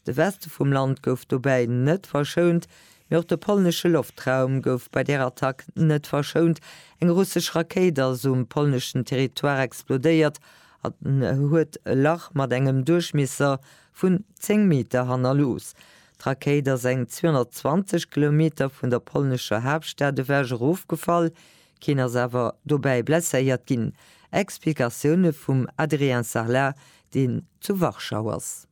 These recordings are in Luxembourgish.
De Weste vum Land gouf dobäi net verschount, mee och de polnesche Loftraum gouf bei där Attack net verschount. Eng russesch Rakéit ass um polneschen Territoire explodéiert an huet e Lach mat engem Duerchmiesser vun 10 Meter hannerlooss. D'Rakéit ass eng 220 Kilometer vun der polnescher Haaptstad ewech erofgefall, keen ass awer dobäi blesséiert ginn. Explikatioune vum Adrien Sarlat, deen zu Warschau ass.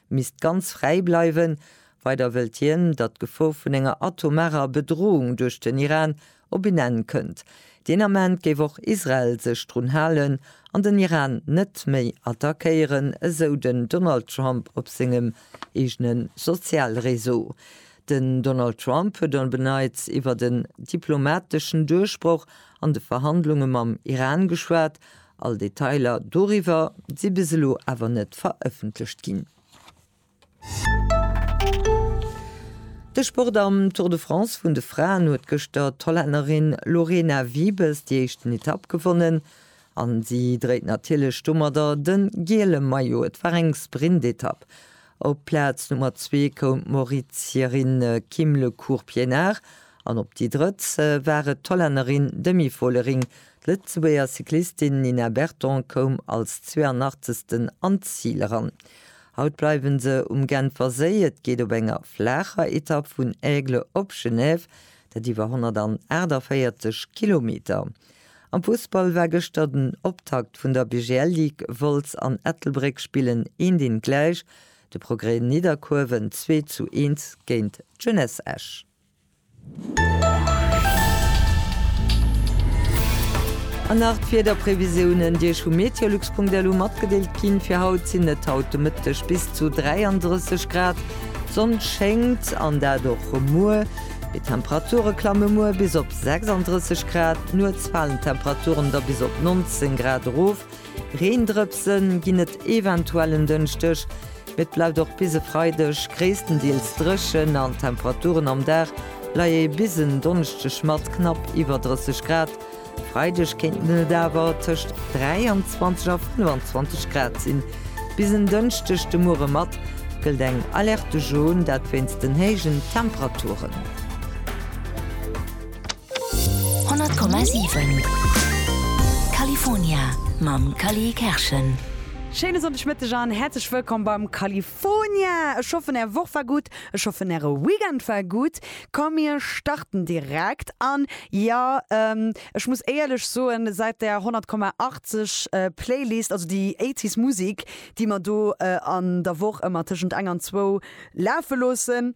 misst ganz fräi bleiwen. Weider wëllt hien, datt d'Gefor vun enger atomarer Bedroung duerch den Iran op een Enn kënnt. Deen Ament géif och Israel sech drun halen an den Iran net méi attackéieren, esou den Donald Trump op sengem eegene Sozialreseau. Den Donald Trump huet op en Neits iwwert en diplomateschen Duerchbroch an de Verhandlunge mam Iran geschwat, All Detailer doriwwer si bis elo awer net verëffentlecht ginn. De Sport am Tour de France vun de Fraen huet gëschter d'Hollännerin Lorena Wiebes déi éischten Etapp gewonnen an si dréit natierlech domadder de giele Maillot. Et war eng Sprintetapp. Op Plaz Nummer zwee koum d'Mauritierin Kim Le Court-Pienaar an op déi drëtt war et d'Hollännerin Demi Vollering D'Lëtzebuerger Cyclistin Nina Berton koum als 82. an d'Zil eran. Haut bleiwe se um Genfer Séi. Et geet op enger flaacher Etapp vun Aigle op Genève, dat iwwer 148 Kilometer. Am Fussball war gëschter den Optakt vun der BGL Ligue. Wolz an Ettelbréck spillen eent eent gläich. De Progrès, Nidderkuerwen 2 zu 1 géint d'Jeunesse Esch. An nach d'Wiederprevisiounen, déi Iech vu Meteolux.lu matgedeelt ginn. Fir haut sinn et haut de Mëtteg bis zu 33 Grad, d'Sonn schéngt, an dat och muer. Déi Temperature klamme muer bis op 36 Grad, nuets falen d'Temperaturen da bis op 19 Grad erof. Reendrëpse ginn et eventuell en Dënschdeg, mee et bleift och bis e Freideg gréisstendeels dréchen an d'Temperaturen am Dag leie bis en Donneschdeg mat knapp iwwer 30 Grad. E Freideg kéinten et awer tëscht 23 a 25 Grad sinn. Bis en Dënschdeg de Muere mat gëllt eng Alerte jaune, dat wéinst den héijen Temperaturen. 100,7 California mam Cally Kerschen. Schéine Sonndegmëtteg an häerzlech wëllkomm beim California! Ech hoffen är Woch war gutt, ech hoffen äre Weekend war gutt. Komm mir starten direkt an jo ech muss éierlech soen, säit der 100,80 Playlist, also déi eighties Musik déi mer do an der Woch ëmmer tëschent eng an zwou lafe loossen,